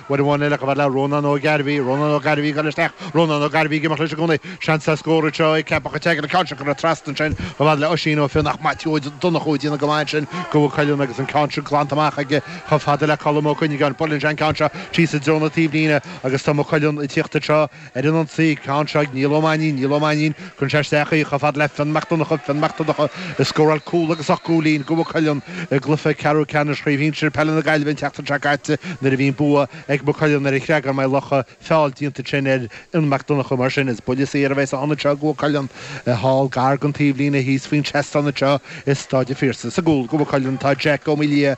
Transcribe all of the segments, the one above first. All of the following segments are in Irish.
Uair amháin eile chomh fada le Rónán Ó Gairbhí, Rónán Ó Gairbhí ag dul isteach, Rónán Ó Gairbhí ag imeacht leis i gcónaí, seans ar scór anseo ag Ceapach an tSeagail, an ceann seo curtha trasna ansin chomh fada le Oisín Ó Finn ach Maitiú Ó Donnchú déanann go maith ansin do Mhaigh Cuilinn agus an ceann sin glanta amach aige chomh fada le Colm Ó Cuinneagáin. Buaileann sé an ceann seo síos i dtreo na taobhlíne agus tá Maigh Cuilinn ag tíocht anseo Ar an ionsaí, ceann seo ag Niall Ó Mainnín, Niall Ó Mainnín, cuireann sé isteach í, chomh fada le Fionn Mac Donncha, Fionn Mac Donncha, a scóráil cúl agus ocht gcúilín do Mhaigh Cuilinn i gcluiche ceathrú ceannais Chraobh Shinsir Peile na Gaillimhe an tseachtain seo caite nuair a bhí an bua ag Maigh Cuilinn ar an Chreagán Maigh Locha. Feall déanta ansin ar Fhionn Mac Donncha mar sin. Is buille saor a bheidh san ionad seo ag Maigh Cuilinn. Thall, gar don taobhlíne, thíos faoin seastán anseo i Staid an Phiarsaigh. Sa gcúl do Mhaigh Cuilinn tá Jeaic Ó Maolaodha,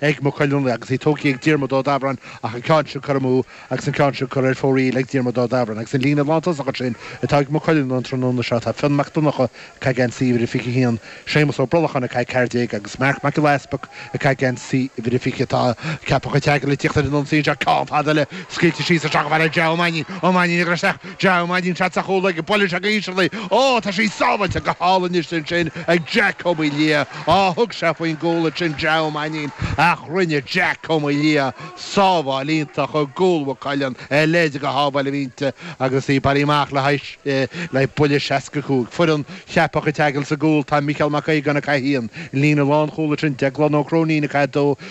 ag Maigh Cuilinn anuraidh agus í tógtha ag Diarmuid Ó Daibhráin ach an ceann sin curtha amú agus an ceann sin curtha ar fóraoil ag Diarmuid Ó Daibhráin agus an líne lántosaigh ansin atá ag Maigh Cuilinn an tráthnóna seo. Tá Fionn Mac Donncha, ag caith geansaí uimhir a 21, Séamus Ó Brolacháin, ag caith 14, agus Marc Mac Giolla Easpaig, ag caith geansaí uimhir a 20, tá Ceapach an tSeagail ag tíocht ar an ionsaí anseo. Ceann fada eile scaoilte síos isteach chomh fada le Ja Ó Mainnín. Ó Mainnín ag rith isteach. Ja Mainnín, seans ar chúl aige, buaileann sé go híseal í, Ó, tá sí sábháilte go hálainn anois ansin ag Jack Cómaoin Liath. Á, thug sé faoin gcúl ansin Ja Mainnín, ach rinne Jack Ó Maolaodha sábháil iontach i gcúl Mhaigh Cuilinn a leithéid de shábháil a bhí inti agus í bailithe amach le haghaidh le haghaidh buille 65. Foireann Cheapach an tSeagail sa gcúl tá Micheál Mac Aogáin 1, líne lánchúil ansin Déaglán Ó Cróinín 2,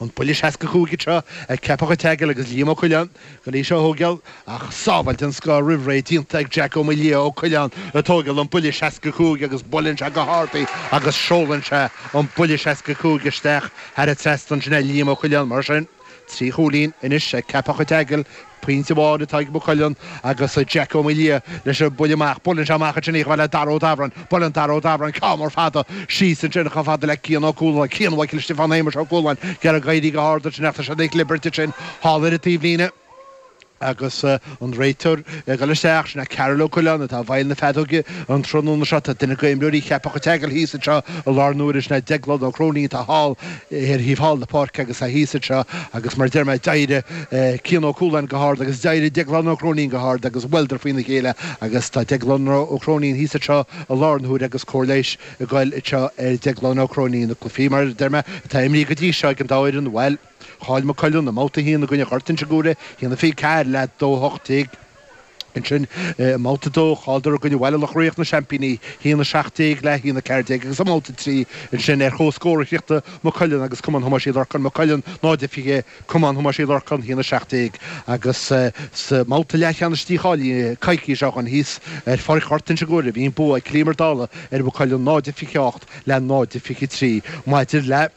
An buille 65 anseo ag Ceapach an tSeagail agus Liam Ó Coileáin ag goil í seo a thógáil ach sábháil den scoth roimh ré déanta ag Jack Ó Maolaodha Ó Coileáin ag tógáil an buille 65 agus buaileann sé go hard í agus seolann sé an buille 65 isteach thar an trasnan sin é Liam Ó Coileáin mar sin trí chúilín anois ag Ceapach an tSeagail Pointe amháin atá ag Maigh Cuilinn agus Jack Ó Maolaodha leis an mbuille amach. Buaileann sé amach ansin í chomh fada le Dara Ó Daibhráin. Buaileann Dara Ó Daibhráin ceann mór fada síos ansin chomh fada le Cian Ó Cualáin. Cian Mhichael Stiofán Shéamuis Ó Cualáin. Ag iarraidh éirí go hard ansin ach tá siad ag clibirt ansin thall ar an taobhlíne agus an réiteoir ag dul isteach, sin é Karol Ó Coileáin atá i bhfeighil na feadóige an tráthnóna seo. Tá duine de imreoirí Cheapach an tSeagail thíos anseo i láthair na huaire, sin é Déaglán Ó Cróinín atá thall. ar thaobh thall na páirce agus tá thíos anseo agus mar a deir mé d'éirigh Cian Ó Cualáin go hard agus d'éirigh Déaglán Ó Cróinín go hard agus bhuaileadar faoin a chéile agus tá Déaglán Ó Cróinín thíos anseo i láthair na huaire agus cóir leighis ag goil anseo ar Déaglán Ó Cróinín. Na cluichí mar a deir mé atá imrithe go dtí seo ag an dá fhoireann bhuel chaill Maigh Cuilinn i mbabhta a haon i gcoinne Ghort Inse Guaire, a haon a fiche ceathair le a dó a hocht déag, Ansin, i mbabhta a dó, chailleadar i gcoinne Bhaile Loch Riach, na seaimpíní, a haon 17, le a haon 14, agus i mbabhta a trí, ansin, ar chomhscór a chríochnaigh Maigh Cuilinn agus Cumann Thomáis Uí Lorcáin, Maigh Cuilinn 0 a 20, Cumann Thomáis Uí Lorcáin, a haon 17, agus sa mbabhta leathcheannais dícháilithe coicís ó shin thíos, ar Pháirc Ghort Inse Guaire, bhí an bua ag Cill Íomair Ó Dálaigh ar Mhaigh Cuilinn 0 a 28, le 0 a 23. Maidir le.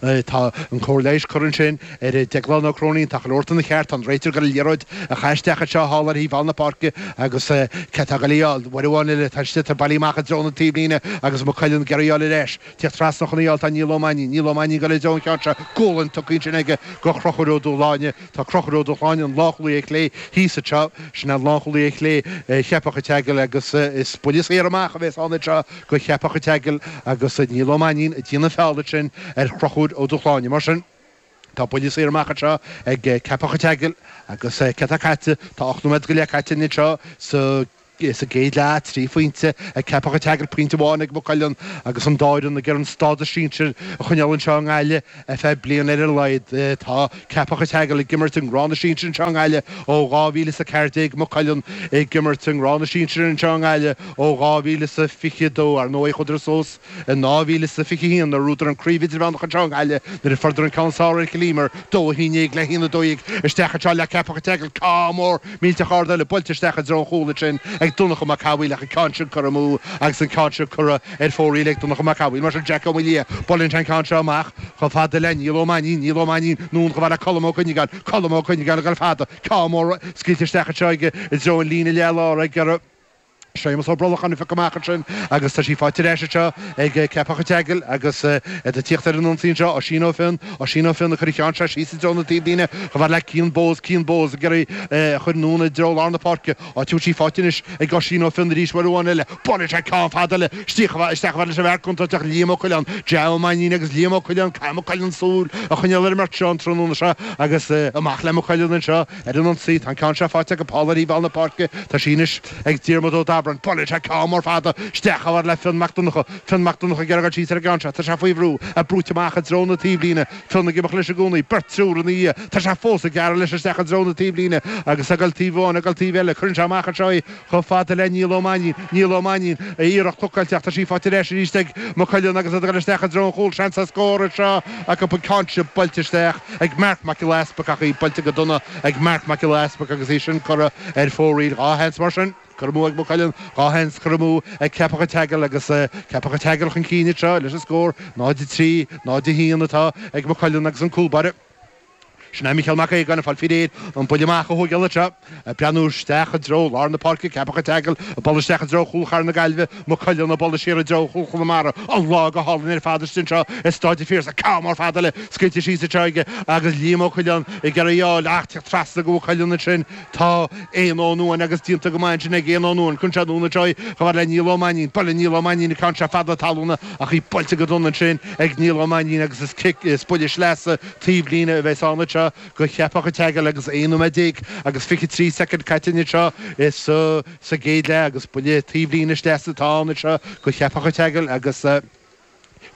Tá an Chóir Leighis curtha ansin ar Dhéaglán Ó Cróinín. Tá chuile shórt ina cheart. Tá an réiteoir ag goil ag iarraidh a chaitheamh isteach anseo thall ar thaobh thall na páirce agus cé atá ag goil á fháil? Uair amháin eile tá an sliotar bailithe amach i dtreo na taobhlíne agus Maigh Cuilinn ag iarraidh a fháil ar ais. Tíocht trasna chun a fháil tá Niall Ó Mainnín. Niall Ó Mainnín ag goil i dtreo an cheann seo. Gualainn tugtha ansin aige go Chruchúr Ó Dúshláine. Tá Cruchúr Ó Dúshláine, an lánchúlaí ar chlé, thíos anseo. Sin é an lánchúlaí ar chlé, Cheapach an tSeagail agus is buille saor amach a bhéas ann anseo. go Cheapach an tSeagail agus Niall Ó Mainnín ag déanamh an feall ansin ar Chruchúr Ó Dúshláine. Mar sin, tá buille saor amach anseo ag Ceapach an tSeagail agus céard atá caite? Tá ocht nóiméad go leith caite anseo sa gcéad leath, trí phointe ag Ceapach an tSeagail, pointe amháin ag Maigh Cuilinn agus an dá fhoireann ag iarraidh an stádas sinsir a choinneáil anseo i nGaillimh. Ar feadh bliana ar a laghad, tá Ceapach a' tSeagail ag imirt i ngrád na sinsir anseo i nGaillimh ó 2014, Maigh Cuilinn ag imirt i ngrád na sinsir anseo i nGaillimh ó 2022. Ar ndóigh, chuadar suas in 2021 nuair a bhuadar an Craobh Idirmheánach anseo i nGaillimh nuair a fuaireadar an ceann is fearr ar Chill Íomair, dó a haon déag le haon a dó dhéag isteach anseo i leath Ceapach a' tSeagail. Ceann mór. Millteach ard eile buailte isteach i dtreo an chúil ansin ag Donncha Mac Cathmhaoil ach an ceann sin curtha amú agus an ceann seo curtha ar fóraoil ag Donncha Mac Cathmhaoil. Mar sin, Jack Ó Maolaodha buaileann sé an ceann seo amach chomh fada le Niall Ó Mainnín. Niall Ó Mainnín anonn chomh fada le Colm Ó Cuinneagáin. Colm Ó Cuinneagáin ag dul fada. Ceann mór scaoilte isteach anseo i dtreo an líne leath-láir ag. Séamus Ó Brolacháin a phiocadh amach ansin agus tá sí faighte arís anseo ag Ceapach an tSeagail agus iad ag tíocht ar an ionsaí anseo, Oisín Ó Finn, Oisín Ó Finn ag cur an cheann seo síos i dtreo na taobhlíne chomh fada le Cian Bowes, Cian Bowes ag iarraidh a chur anonn i dtreo lár na páirce, áit a bhfuil sí faighte anois ag Oisín Ó Finn arís uair amháin eile, buaileann sé ceann fada eile isteach chomh fada leis an bhfear contúirteach Liam Ó Coileáin, Ja Ó Mainnín agus Liam Ó Coileáin, caithfidh Maigh Cuilinn súil a choinneáil ar an mbeirt seo an tráthnóna seo agus amach le Maigh Cuilinn anseo. Ar an ionsaí, tá an ceann seo faighte acu thall ar thaobh thall na páirce, tá sí anois ag Diarmuid Ó Dabrain. Buaileann sé ceann mór fada isteach chomh fada le Fionn Mac Donnacha. Fionn Mac Donnacha ag iarraidh goil síos ar an gceann seo, tá sé faoi bhrú, brúite amach i dtreo na taobhlíne. Fionn ag imeacht leis i gcónaí, beirt, triúr ina dhiaidh. Tá sé fós ag gearradh leis isteach i dtreo na taobhlíne agus ag goil taobh amháin, ag goil taobh eile. Cuireann sé amach anseo é. Chomh fada le Niall Ó Mainnín, Niall Ó Mainnín, a iarracht blocáilte ach tá sí faighte ar ais arís ag Maigh Cuilinn agus iad ag dul isteach i dtreo an chúil. Seans ar scór anseo acu, tá an ceann seo buailte isteach ag Marc Mac Giolla Easpaig ach í buailte go dona ag Marc Mac Giolla Easpaig agus í sin curtha ar fóraoil. Dhá sheans mar sin curtha amú ag Maigh Cuilinn, dhá sheans curtha amú ag Ceapach an tSeagail agus Ceapach an tSeagail chun cinn anseo leis an scór. 0-3, 0-1 atá ag Maigh Cuilinn agus an cúlbáire. Sin é Micheál Mac Aogáin ag fáil faoi réir an buille amach a thógáil anseo, ag breathnú isteach i dtreo lár na páirce, Ceapach an tSeagail ag bualadh isteach i dtreo chúl Chathair na Gaillimhe, Maigh Cuilinn ag bualadh siar i dtreo chúl Chonamara. An lá go hálainn ar fad istigh anseo i Stáid an Phiarsaigh, ceann mór fada eile scaoilte síos anseo aige agus Liam Ó Coileáin ag iarraidh í a fháil ach ag teacht trasna go Maigh Cuilinn ansin tá Éanna Ó Nuáin agus díonta go maith ansin ag Éanna Ó Nuáin, cuireann sé anonn anseo í chomh fada le Niall Ó Mainín, buaileann Niall Ó Mainín an ceann seo fada talúna ach í buailte go dona ansin ag Niall Ó Mainín agus is cic, is buille sleasa, Taobhlíne a bheas ann anseo go Cheapach a' tSeagail agus 11 nóiméad agus 23 soicind caite ansin anseo sa gcéad leath agus buille taobhlíne sleasa atá ann anseo go Cheapach a' tSeagail agus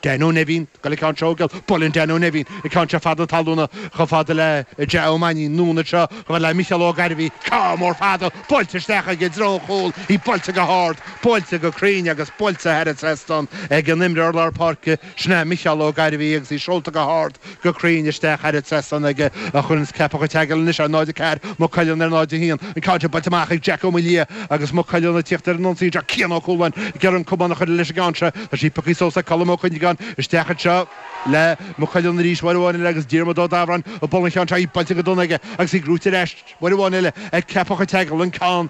Danno Nevin ag goil an ceann seo a thógáil, buaileann Danno Nevin an ceann seo fada talúna chomh fada le Ja Ó Mainín, anonn anseo chomh fada le Micheál Ó Gairbhí, ceann mór fada buailte isteach aige i dtreo an chúil, í buailte go hard, buailte go cruinn agus buailte thar an trasnán ag an imreoir lár páirce. Sin é Micheál Ó Gairbhí agus í seolta go hard go cruinn isteach thar an trasnán aige a chuireann Ceapach an tSeagail anois ar 0-4 Maigh Cuilinn ar 0-1. An ceann seo buailte amach ag Jack Ó Maolaodha agus Maigh Cuilinn ag tíocht ar an ionsaí ach Cian Ó Cualáin ag iarraidh an camán a chur leis an gceann seo. Tá sí pioctha suas ag Colm Ó Cuinneagáin isteach anseo le Maigh Cuilinn arís uair amháin eile agus Diarmuid Ó Dabhráin ag bualadh an cheann seo í buailte go dona aige agus í gnóite ar ais Uair amháin eile ag Ceapach an tSeagail an ceann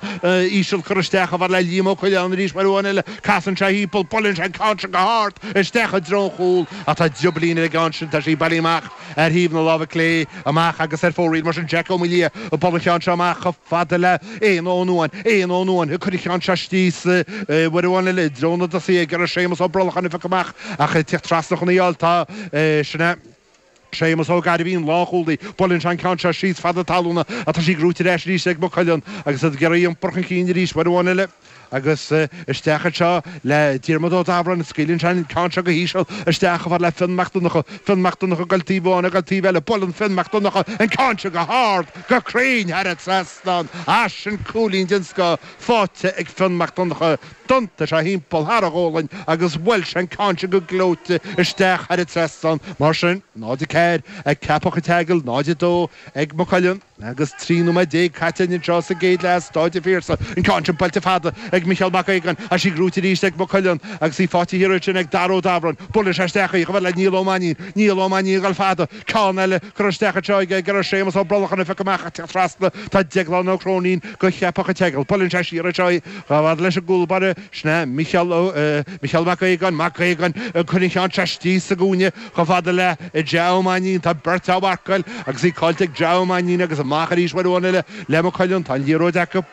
íseal curtha isteach chomh fada le Liam Ó Coileáin arís uair amháin eile casann sé thimpeall buaileann sé an ceann seo go hard isteach i dtreo an chúl ach tá drioblín ar an gceann sin tá sí bailithe amach ar thaobh na láimhe clé amach agus ar fóraoil mar sin Jack Ó Maolaodha ag bualadh an cheann seo amach chomh fada le Éanna Ó Nuáin Éanna Ó Nuáin ag cur an cheann seo síos uair amháin eile i dtreo na dtosaithe ag iarraidh Séamus Ó Brolcháin a phiocadh amach ach ag tiocht trasna chun í a fháil tá sin é. Séamus Ó Gairbhí, an lánchúlaí, buaileann sé an ceann seo síos fada talúna ach tá sí gnóite ar ais arís ag Maigh Cuilinn agus iad ag iarraidh í a iompar chun cinn arís uair amháin eile agus isteach anseo le Diarmaid Ó Dabhráin, scaoileann sé an ceann seo go híseal isteach chomh fada le Fionn Mac Donnacha, Fionn Mac Donnacha ag goil taobh amháin agus ag goil taobh eile, buaileann Fionn Mac Donnacha an ceann seo go hard, go cruinn thar an trasnán, ah sin cúilín den scoth faighte ag Fionn Mac Donnacha. D'iontaigh sé thimpeall thar a ghualainn agus bhuail sé an ceann sin go gleoite isteach thar an trasnán. Mar sin, 0-4 ag Ceapach An tSeagail, 0-2 ag Maigh Cuilinn agus 13 nóiméad caite anseo sa gcéad leath i Stáid an Phiarsaigh. An ceann sin buailte fada ag Micheál Mac Aogáin ach tá sí gnóite arís ag Maigh Cuilinn agus í fáite thiar ansin ag Dara Ó Dabhráin. Buaileann sé isteach í chomh fada le Niall Ó Mainín. Niall Ó Mainín ag dul fada. Ceann eile. Curtha isteach anseo ag iarraidh Séamus Ó Brolcháin a phiocadh amach ag teacht trasna tá Deaglán Ó Cróinín go Cheapach an tSeagail. Buaileann sé siar anseo í chomh fada leis an gcúl báire. Sin é Micheál Ó Micheál Mac Aogáin Mac Aogáin ag cur an cheann seo istigh sa gcúinne chomh fada le Ja Ó Mainín. Tá beirt á mharcáil agus í caillte ag Ja Ó Mainín agus amach arís uair amháin eile le Maigh Cuilinn. Tá an liathróid acu.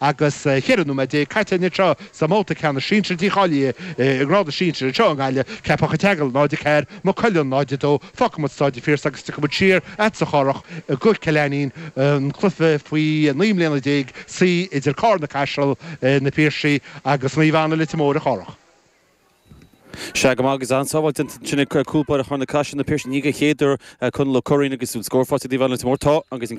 Agus ceithre nóiméad déag caite anseo sa mbabhta ceannais sinsir dícháilithe i ngrád na sinsir anseo i nGaillimh, Ceapach an tSeagail, 0, 4, Maigh Cuilinn, 0, 2, Fágfaimid Staid an Phiarsaigh agus tiocfaimid siar agatsa a Chárthaigh go Cill Ainnín, An Cluiche faoi naoi mbliana déag C idir Carna Caiseal, Na Piarsaigh agus Naomh Anna, Leitir Móir, a Chárthaigh. Sea go maith agus an-sábháil ansin ag cúl báire Charna Caiseal, Na Piarsaigh ní den chéad uair Conall Ó Curraoin agus an scór faighte ag Naomh Anna, Leitir Móir Tá an agus an